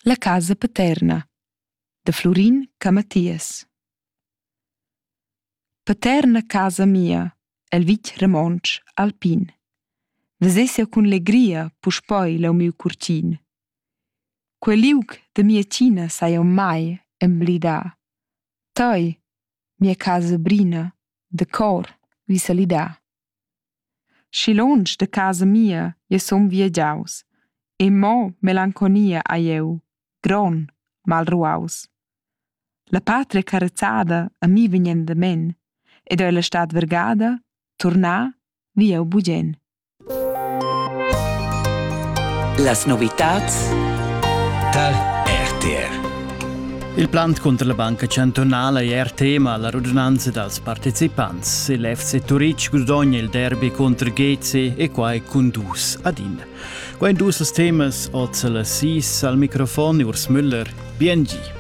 La casa paterna da Flurin Camathias. Paterna casa mia el vitg romontsch alpin. Vesessia cun legria puspoi leu miu curtin. Quel liug de mia tina sai eu mai emblidar. Toi, mia casa brina, de cor vi salidar. Schi lontsch da casa mia jeu sun viagiaus e mo melanconia hai jeu, gron, malruaus. La patria carezada a mi vegn endamen ed ella stat vargada, turnà vi jeu bugen. Las novitads tar RTR Il plant cunter la Banca chantunala è er tema alla radunanza dals partecipants. Il FC Turitg gudogna il derby contro Gezi e quai cun dus ad in. Quai dus dus temas oz alla sis al microfon Urs Müller, BNG.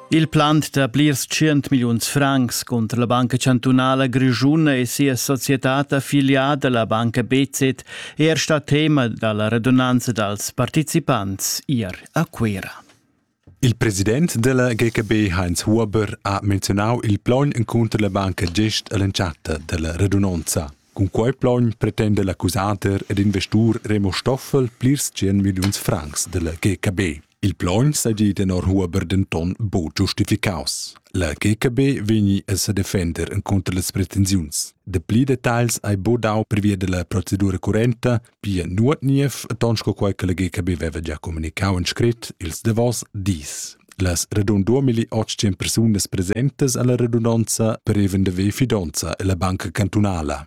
Il plant da plirs tschient milliuns francs cunter la Banca chantunala grischuna e sia societad affiliada, la banca BZ, è er stà tema da la redunanza dals participants ier a Cuira. Il president della GKB Heinz Huber ha menzionau il plogn encunter la banca gest all'entschatta della redunanza. Cun quei plogn pretende l'accusader ed investur Remo Stoffel plirs 100 milliuns francs della GKB. Il plaun sedi tenor Huber denton buc giustificaus. La GKB vegni a sedefender encunter las pretensiuns. Dapli detagls hai bu dau previa della procedura currenta, pia nuot niev, ton sco quei che la GKB veva già comunicau en scrit ils davos dis. Las radun 2800 persunas presentes alla redundanza preven de ve fidonza e la banca cantunala.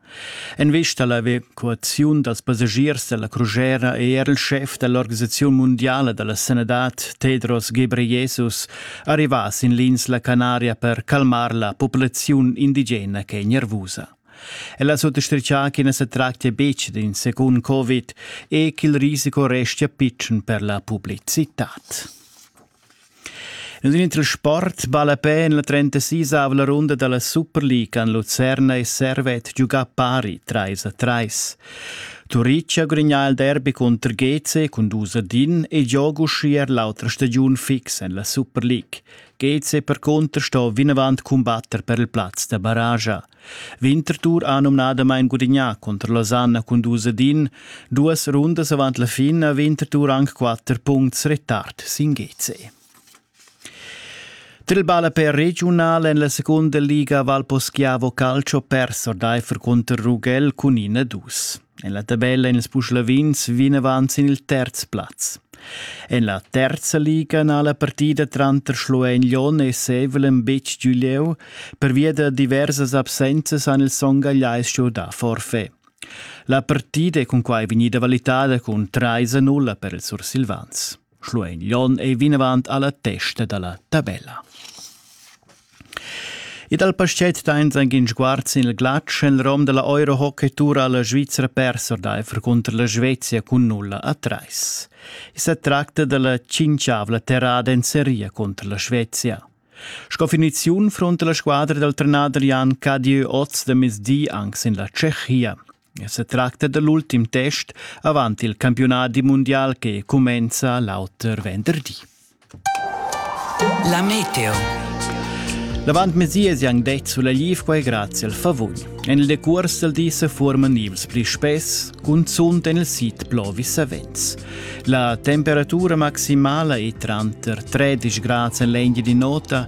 En vista alla evacuaziun dals passagiers dalla crugera è er il chef dell'organisazione mondiale della sanidad Tedros Ghebreyesus arrivà sin l'insla Canaria per calmar la populazione indigena che è nervosa. Ella sottostritga che ne se tractia betg d'un secund Covid e ch'il risico restia pitschen per la pubblicità. En in transport vala a pè en la 36-avla runda da la Super League han Lucerna e Servet giugà pari trais a trais. Turitg ha gudagnà il derby cunter GC cun dus a din e gioga uschia er l'autra stagiun fix en la Super League. GC percunter sto vinavant cumbatter per il plaz da barragia. Winterthur ha numnadamain gudignà cunter Losanna cun dus ad in. Duas rundas avant la fin ha Winterthur anc quatter puncts retard sin GC. Trilbala per regiunal en la seconda liga Valposchiavo Calcio perso ordaifer cunter Ruggell cun in a dus. En la tabella en ils puslavins vegn avant sin il terz plaz. En la terza liga n'ha la partida tranter Schluein-Lyon e Sevelem betg giu lieu, pervia da diversas absenzas han ils songagliais giu da forfait. La partida è cunquai vegnida valitada cun 3 a 0 per ils sursilvans. Schluein Jon ei vinavant alla testa dalla tabella. E dal paschet dains ein in sguard sin il glatsch en rom della Euro Hockey Tour alla Svizzera persor d'Eifer contro la Svezia cun nulla a treis. E se tracta della cinciavla terrada en seria contro la Svezia. Sco finiziun fronte la squadra del trenader Jan Cadieu oz de mezdi anche in la Tschechia. Setracta da l'ultim test avant il campiunadi mundial che cumenza l'auter venderdi. La meteo. L'avant mesias han detto sulla Livquai grazie al favugn. En il decurs del di se forman ivs pli spess, cunzunt en il sit plovi savens. La temperatura maximala è tranter 13 gradi en l'Engie di nota